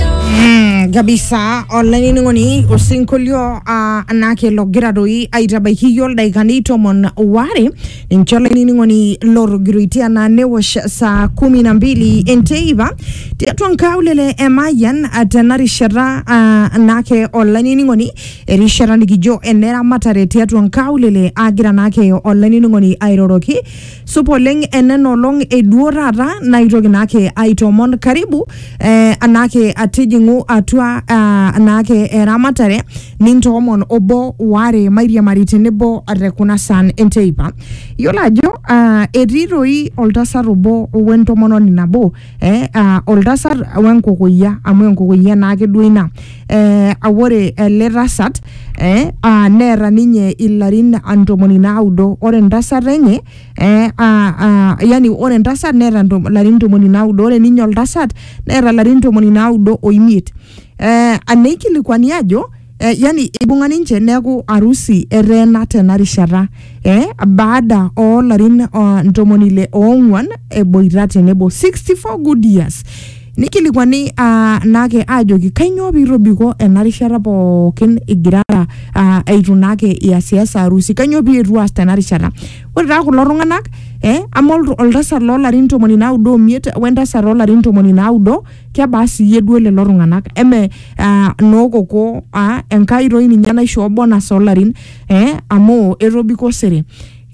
Mm, kabisa olainining'oni osinkolio uh, anake logira doi aitabaiki iyio ildaikani tomon ware ninche olainining'oni lotogiroitie anaa newosh saa kumi na mbili enteipa tiatua nkaulele emayian uh, tena rishata uh, anake olainining'oni erishata nikijo eneramatare tiatua nkaulele agira naake olainining'oni airoroki Supa oleng enena olong eduo taata naitoki naake aitoomon karibu eh, anaake atijing'u atua ah, anaake eramatare nintoomon obo waare mairiamari tenebo te kuna saan enteipa. Yiolo ajo ah, etii toi oltasat obo wentomononi nabo eh, ah, oltasat wenkukuya amu enkukuya naake duo ina eh, ah, ore ele tasat eh, ah, neeta ninye ilarin ah, ntomoni naudo ore entasat enye eh, ah, ah, yani ore entasat neeta ntom- ilarin ntomoni naudo ore ninye oltasat neeta ilarin ntomoni naudo oimiet eh, aneikilikuani ajo eh, yani eibung'a ninche neaku arusi eteena tena rishata eh, baada oo larin uh, ntomoni ile oong'uan eboita tenebo 64 good years nikilikuani uh, naake aajoki kainyoo piitobiko ena rishata pookin igirara uh, eitu naake iasiasa arusi kainyoo pietu aas tena rishata ore taa kulo tung'anak eh, ama oltu- oltasat loolarin ntomoni naudo omiet wentasat oolarin ntomoni naudo kebaa siyie duo lelo tung'anak eme ah, nookoko ah, enkai toi ninye naishoo bonus olarin eh, amu etobiko osere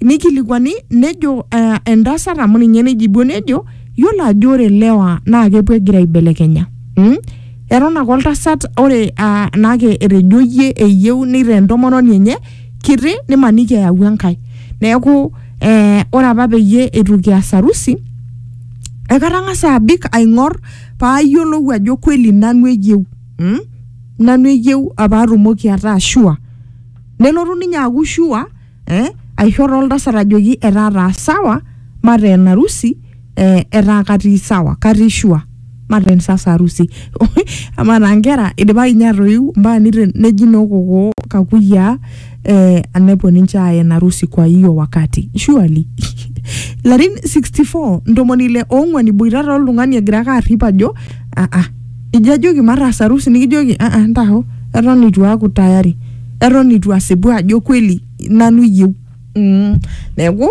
nikilikuani nejo ah, entasat amu ninye neijibuo nejo yiolo ajo ore lewa naa kepuo egira aibelekenya mm? eton ake oltasat ore ah, naake etejo yie eyieu neitaa entomononi enye kiti nimaniki eyawua enkai neeku eh, ore apa peyie eitu kias harusi ekatang'asa abik aing'or paayiolou ajo kweli nanu eyieu mm? nanu eyieu apaatumoki ataa shua nelotu ninye aaku shua eh? aisho toltasat ajoki etaa taa sawa mateen arusi eh, etaa katii sawa katii shua mateen sasa harusi amaa taa nkera idipaki ninye atoiu mpaka nite- neji noo kokoo kakuyiaa eh, anepuo ninche aaya ina rusi kwa hiyo wakati surely larin 64 ntomoni ile oong'uan iboitata oltung'ani egira ake arrip ajo ah, ah, ijo ajoki mataas arusi nikijoki ah, ah, ntaho eton itu aaku tayari eton itu asipu ajo kweli nanu iyieu mm, neeku